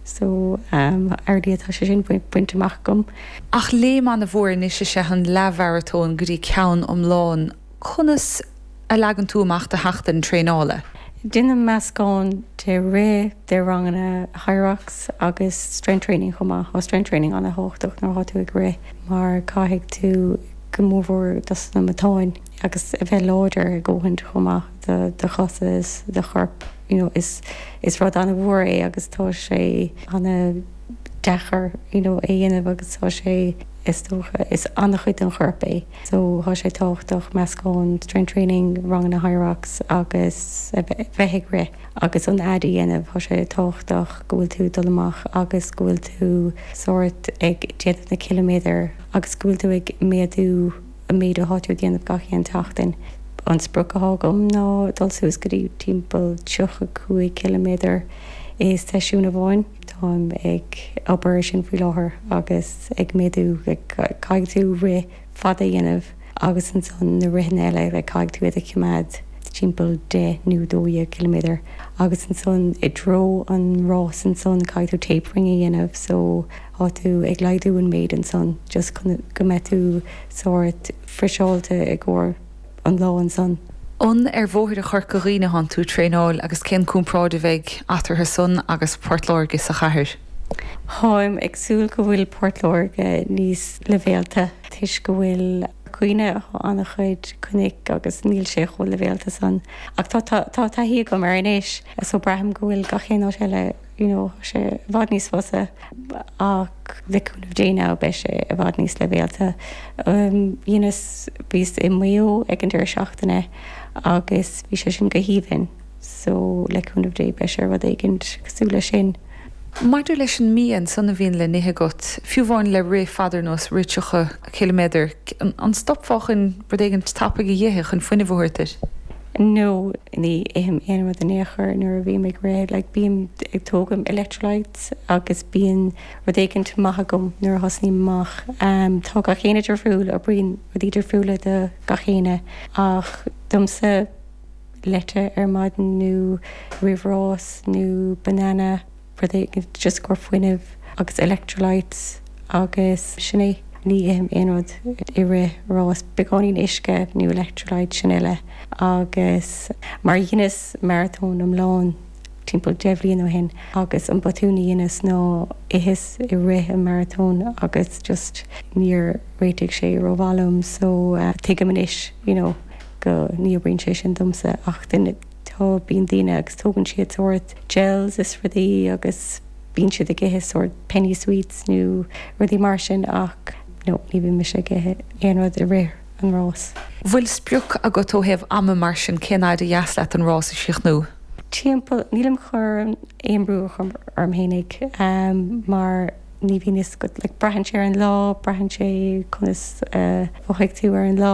So, already tá sé sin bainte amach agam. Ach léim ana-mhór anois is ea an leathmharatón go dtí ceann iomlán. Conas a leagann tú amach do sheachtain traenála? Déanaim meascán de rith, de ranganna Hyrox agus strength training chomh maith. Tá strength training ana-thábhachtach nuair atá tú ag rith mar caithfidh tú go mór mhór dos na matáin agus a bheith láidir a dhóthaint chomh maith do do chosa is do chorp. you know is is rud an-mhór é agus tá sé an-deacair you know é dhéanamh agus tá sé is dócha is an-chuid den chorp é so tá sé tábhachtach meascán strength training ranganna Hyrox agus a bheith bheith ag rith agus an fhad a dhéanamh tá sé tábhachtach go bhfuil tú dul amach agus go bhfuil tú sórt ag déanamh na ciliméadar agus go bhfuil tú ag méadú an méid atháir ag déanamh gach aon tseachtain. An sprioc athá agam ná dul suas go dtí timpeall tríocha cúig ciliméadar i seisiún amháin. Táim ag obair ar sin faoi láthair agus ag méadú, caithfidh tú rith fada a dhéanamh agus ansan na ritheanna eile like caithfidh tú iad a choimeád timpeall deich nó dó dhéag ciliméadar agus ansan i dtreo an rás ansan caithfidh tú tapering a dhéanamh so Thá tú ag laghdú an méid ansan just chun go mbeidh tú sórt friseáilte i gcomhair an lá ansan. An ar bhóithre Chorca Dhuibhne athán tú ag traenáil agus cén comparáid a bheidh eatarthu san agus Port Láirge sa chathair? Tháim ag súil go bhfuil Port Láirge níos leibhéalta toisc i gCorca Dhuibhne thá ana-chuid cnoic agus níl sé chomh leibhéalta san ach tá taithí agam air anois so braithim go bhfuil gach aon áit eile you know tá sé i bhfad níos fusa ach le cúnamh Dé now beidh sé i bhfad níos leibhéalta. Dheineas, bhíos i Maigh Eo ag an deireadh seachtaine agus bhí sé sin go haoibhinn so le cúnamh Dé beidh sé rud éigint cosúil leis sin. Maidir leis an mbia ansan a bhíonn le n-ithe agat, fiú amháin le rith fada ar nós rith 30 ciliméadar, an stopfá chun rud éigint tapaidh a dh'ithe chun fuinneamh a thabhairt duit? No, ní ithim aon rud in aon chor nuair a bhím ag rith. Like, bím ag tógaint electrolytes agus bíonn rud éigint maith agam nuair a thosnaím amach. Tá gach éinne difriúil, oibríonn rudaí difriúla do gach éinne ach domsa, leite ar maidin nó roimh rás nó banana. rud éigin just i gcomhair fuinnimh agus electrolytes agus sin é. Ní ithim aon rud i rith ráis, beagáinín uisce nó electrolyte sin uile agus mar dheineas maratón iomlán timpeall deich mbliain ó shin agus an botún a dheineas ná itheas i rith an maratón agus just níor réitigh sé ró-mhaith liom so tuigim anois you know go ní oibríonn sé sin domsa ach duine Tá, bíonn daoine agus tógann siad sórt gels is rudaí agus bíonn siad ag ithe sórt penny sweets nó rudaí mar sin ach no, ní bhíonn mise ag ithe aon rud i rith an rás. An bhfuil sprioc agat ó thaobh ama mar sin, cén fhaid ba dheas leat an rás a chríochnú? Timpeall, nílim chun aon brú a chur orm fhéinig mar ní bhíonn fhios agat, like braitheann sé ar an lá, braitheann sé conas a mhothóidh tú ar an lá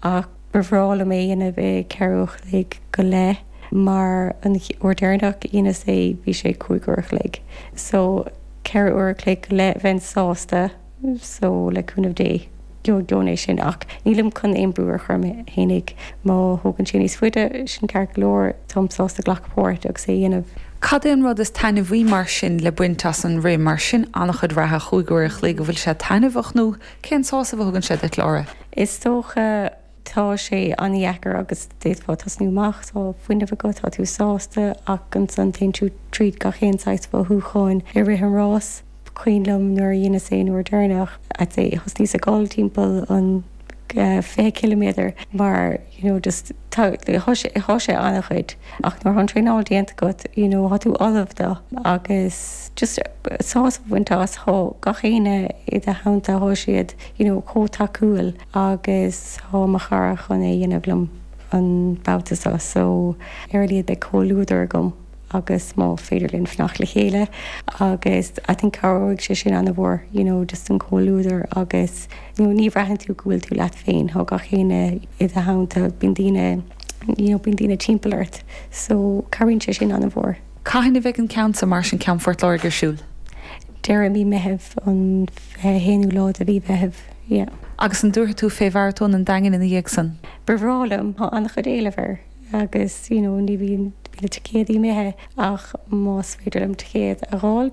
ach. Ba bhreá liom é a dhéanamh i gceithre uair a chloig go leith mar an uair deireanach a dheineas é bhí sé cúig uair a chloig. So, ceithre uair a chloig go leith bheinn sásta. So, le cúnamh Dé, gheobhainn é sin. Ach nílim chun aon brú a chur orm fhéinig. Má thógann sé níos faide, sin ceart go leor. Táim sásta glacadh páirt agus é a dhéanamh. Cad é an rud is taitneamhaí mar sin le baint as an rith mar sin? Ana-chuid reatha, chúig uair a chloig, an bhfuil sé taitneamhach nó Cén sásamh a thugann sé duit, Laura? Is dócha tá sé an-dheacair agus d'fhéadfá tosnú amach, tá fuinneamh agat, tá tú sásta ach ansan téann tú tríd gach aon saghas mothúcháin i rith an rás. Is cuimhin liom nuair a dheineas é an uair deireanach, I'd say thosnaíos ag gol timpeall an 20 ciliméadar mar, you know, just tá, tá sé, thá sé ana-chuid ach nuair athá an traenáil déanta agat, you know, tá tú ullamh dó agus just sásamh a bhaint as, tá gach éinne i do theannta, thá siad, you know, chomh tacúil agus thá mo chara chun é a dhéanamh liom an babhta seo so ar a laghad beidh comhluadar agam. agus má féidir linn fanacht le chéile agus I think cabhróidh sé sin ana mhór you know just an comhluadar agus you know ní bhraitheann tú go bhfuil tú leat féin thá gach éinne i do theannta bíonn daoine you know bíonn daoine timpeall ort so cabhraíonn sé sin ana mhór. Cathain a bheidh an ceann san mar sin ceann Phort Láirge ar siúl? Deireadh mí Meitheamh, an fiche haonú lá de mhí Mheitheamh, yeah. Agus an dtabharfaidh tú fé Mharatón an Daingin ina dhiaidh san? Ba bhreá liom, thá ana chuid éileamh air. Agus you know ní bhíonn bíonn na ticéadaí imithe ach más féidir liom ticéad a dh'fháilt.